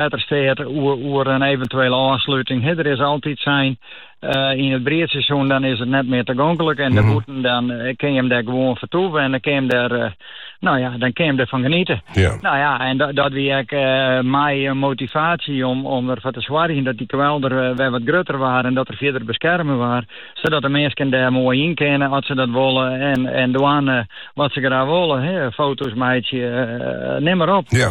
Wettersteat oer in eventuele ôfsluting. He, der is altyd sein, eh, yn it briedseizoen dan is it net mear tagonklik en dêrbûten dan eh, kin jim dêr gewoan fertoeven en dan kin jim dêr, eh, no ja, dan kin jim derfan genieten. Ja. No ja, en da- dat wie ek eh, mei in motivatie om, om derfoar te soargjen dat dy kwelder eh, wer wat grutter waard en dat er fierder beskerme waard, sadat de minsken dêr moai yn kinne at se dat wolle en, en dwaan eh, wat se graach wolle. He, foto's meitsje, eh, neam mar op. Ja.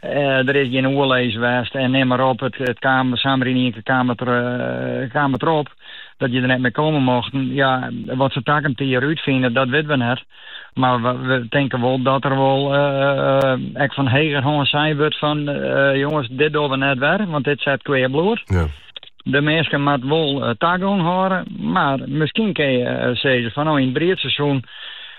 Der is gjin oerlis west en neam mar op. It kaam samar yn ien kear kaam it derop dat je der net mear komme mochten. Ja, wat se takom jier útfine, dat witten we net. Mar we tinke wol dat der wol ek fan hegerhân sein wurdt fan, jonges, dit dogge we net wer, want dit set kwea bloed. Ja. De minsken moatte wol tagong hâlde, mar miskien kinne je sizze fan no yn it briedseizoen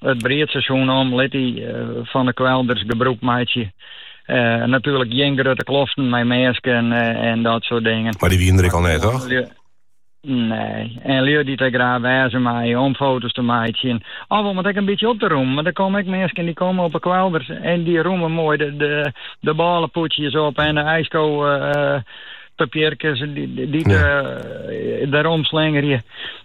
It briedseizoen om lit dy fan de kwelders gebrûk meitsje. Natuerlik gjin grutte kloften mei minsken en dat soart dingen. Mar dy wienen der ek al net, toch? Nee. En lju dy't dêr graach wêze meie om foto's te meitsjen of om it ek in bytsje op te romjen. Want der komme ek minsken dy't komme op 'e kwelders en dy romje moai de bôlepûdsjes op en de ijskopapierkes dy't der omslingerje.